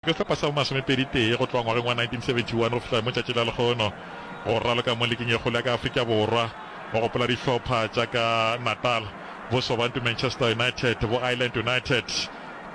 Go hlopa sa bo masomepedi tee go tloga ngwageng wa 1971 go fihla mo tšatši la lehono, go raloka mo liking e kgolo ya ka Afrika Borwa, go gopola dihlopha tša ka Natal, bo Sobantu Manchester United, bo Island United,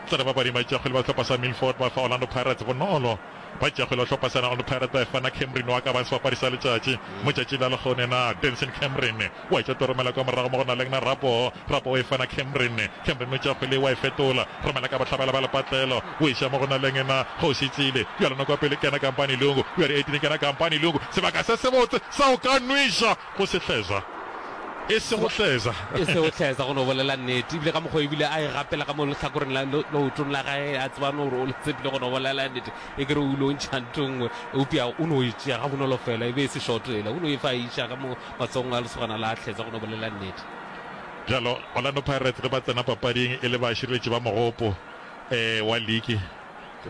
tsa re bapading ba tšeakgwele ba sehlopha sa Milford ba fa Orlando Pirates bonolo, ba tšeakgwele ba sehlopha sena Orlando Pirates ba e fa na Cameron wa ka bang sebapadi sa letšatši mo tšatšing la lehono yena Denson Cameron. wa e tša Toromela ka morago mo go na le gna Rapo, Rapo o e fana Khemrin, Khemrin o tša kgwele ye wa e fetola, Romela ka bohlabela ba lepatlelo, o e ša mo go na le gna Kgoši Tsile, bjalo noko ya pele kena Kampani Lungu, bjale e tine kena Kampani Lungu, sebaka se sebotse sa go ka nwiša go se hleza, e se go hleza. E se go hleza go no bolela nnete, ebile ka mokgwa e bile a e gapela ka mo lehlakoreng la leotong la gae, a tseba no gore o le tsepile go no bolela nnete, e kere o ile o ntšha nto nngwe, eupša o no e tšea ga bonolo fela, e be e se šoto yela, o no e fa a e iša ka mo Matsogong a lesogana la Hleza go no bolela nnete. Bjalo, Orlando Pirates ge ba tsena papading e le bašireletši ba mogopo wa liki,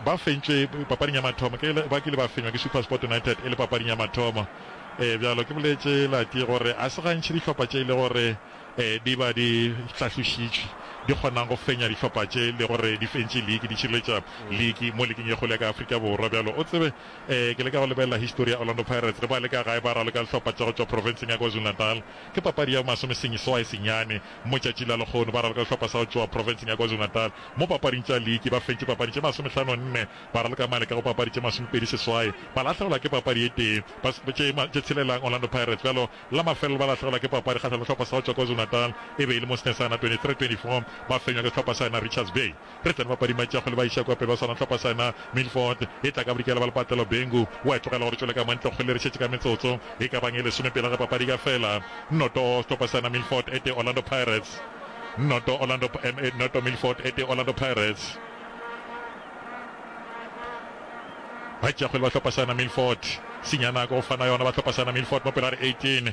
ba fentšwe papading ya mathomo ke le, ba kile ba fenywa ke SuperSport United e le papading ya mathomo. Bjalo, ke boletše Lati gore a se gantši dihlopha tše e le gore di ba di hlahlošitšwe di kgonang go fenya dihlopha tše le gore di fentše liki, di šireletša liki mo liking ye kgolo ya ka Afrika Borwa. Bjalo, o tsebe Ee, ke leka go lebelela histori ya Orlando Pirates le baleka gae ba raloka dihlopha tša go tšwa profenseng ya KwaZulu-Natal. Ke papadi ya bomasomeseswai senyane mo tšatši la lekgono ba raloka dihlopha sa go tšwa profenseng ya KwaZulu-Natal mo papading tša liki. Ba fentše papadi tše masomehlano nne ba raloka maleka go papadi tše masomepedi seswai ba lahlegelwa ke papadi e tee tše tše tshelelang. Orlando Pirates bjalo la mafelelo ba lahlegelwa ke papadi kgahlanong le dihlopha sa go tšwa KwaZulu-Natal e be e le mo Snesana 23-24 ba fenywa ke sehlopha sa yona Richards Bay. Re tsene bapadi Machago le Baishakope ba swana hlopha sena. Milford e tla ka bodikela ba Lepatelo Bengu wa e tlogela gore tšwele ka mantle go kgwele re šetše ka metsotso e ka bang e lesome pele ga papadi ka fela. Noto Sehlopha sena Milford e tee Orlando Pirates noto Orlando MA noto Milford e tee Orlando Pirates Bachago le ba hlopha sena Milford Sinyana ko fana yona ba hlopha sena Milford mo pele ga re 18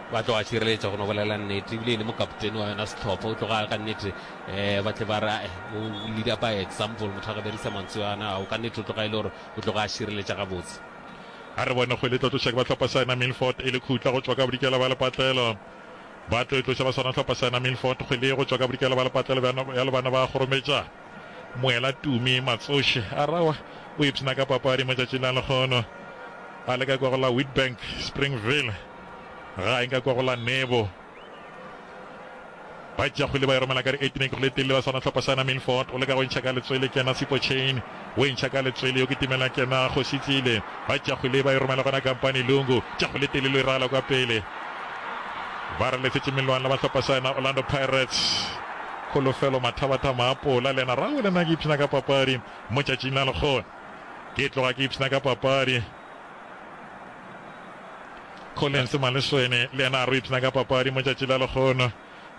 Ba tloga šireletša go no bolela nnete, ebile e le mokapoteni wa yona sehlopha o tloga ka nnete. Eh, ba tle ba re eh, o leader by example, motho a ka berisa mantswe ana ao ka nnete o tloga e le gore o tloga a šireletša gabotse. A re bone kgwele e tlo tloša ke ba hlopha sa yena Milford e le khutla go tšwa ka bodikela ba lepatlelo. Ba tlo e tloša ba swana hlopha sa yena Milford kgwele ye go tšwa ka bodikela ba lepatlelo bja le bana ba kgorometša. Moela Tumi Matsoši a re aowa o ipshina ka papadi mo tšatšing la lekgono a leka kwa go la Witbank Springville. Gae nka kwa go la Nebo. Ba tša kgwele ba e romela ka re Etne ke kgwele telle ba swana hlopha sa na Milford o leka go ntšha ka letswele kena Sipo Chain o e ntšha ka letswele yo ke timela kena Kgosi Tsile ba tša kgwele ba e romela gona Kampani Lungu tša kgwele telle lo e rala kwa pele ba re lefetše melwana ba hlopha sa na Orlando Pirates Kholofelo mathabatha maapola le yena rawe le nna ke ipshina ka papadi mo tšatšing la lekgone ke tloga ke ipshina ka papadi Collins Maleswene le yena a re o ipshina ka papadi mo tšatši la lekgono.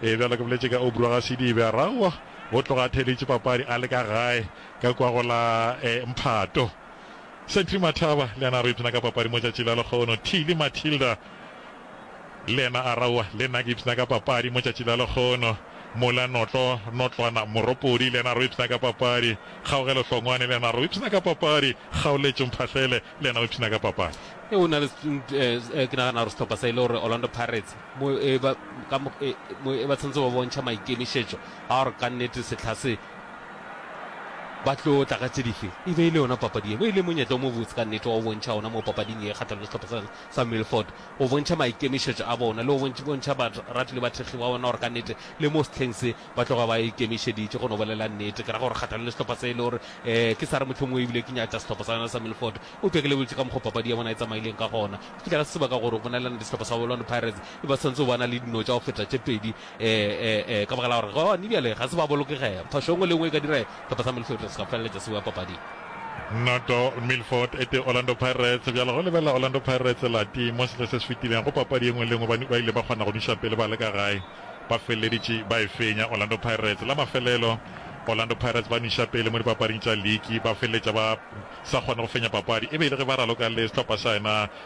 Ee, bjalo ke boletše ka Obro Gasidibe, Araua o tloga a theeleditše papadi a le ka gae ka kua go la eh, Mphato. Sentry Mathaba le yena a re o ipshina ka papadi mo tšatši la lekgono. Thili Matilda Le yena a ra, Owa, le nna ke ipshina ka papadi mo tšatši la lekgono. Mola notlo, notlwana, moropodi, le yena a ra o ipshina ka papadi. Kgaogelo hlongwane, le yena a ra o ipshina ka papadi. Kgaoletšo mphahlele, le yena o ipshina ka papadi. Ee, go na le, ee, ke nagana gore sehlopha sa e le gore Orlando Pirates, mo e ba, ka mo, ee, mo e ba tshwanetse ba bontšha maikemišetšo a gore ka nnete sehla se ba tlo tla ka tše dife. E be e le yona papadi ye, mo e le monyetla o mobotse ka nnete wa go bontšha ona mo papading ye kgahlanong le sehlopha sa rena sa Milford o bontšha maikemišetšo a bona le go bontšha barati le bathekgi ba bona gore ka nnete le mo sehleng se ba tloga ba ikemišeditše go no bolela nnete. Ke ra gore kgahlano le sehlopha se e le gore ee ke sa re mohlomongwe e bile ke nyatša sehlopha sa yona sa Milford eupša ke lebeletse ka mokgwa papadi ya bona e tsamaileng ka gona. Go fihla ka setseba ka gore go bonalela nnete sehlopha sa Orlando Pirates e ba santse ba na le dino tša go feta tše pedi ee ee ee ka baka la gore gone bjale ga se ba bolokegega phošo e nngwe le e nngwe e ka dira Tota sa Milford se ka feleletša se boa papading. Noto, Milford e tee Orlando Pirates. Bjalo go lebelela Orlando Pirates lati mo sehle se se fetileng go papadi ye nngwe le nngwe ba ile ba kgona go nuša pele ba le ka gae. Ba feleleditše ba e fenya Orlando Pirates. La mafelelo Orlando Pirates ba nuša pele mo dipapading tša liki ba feleletša ba sa kgone go fenya papadi e be e le ge ba raloka le sehlopha sa yena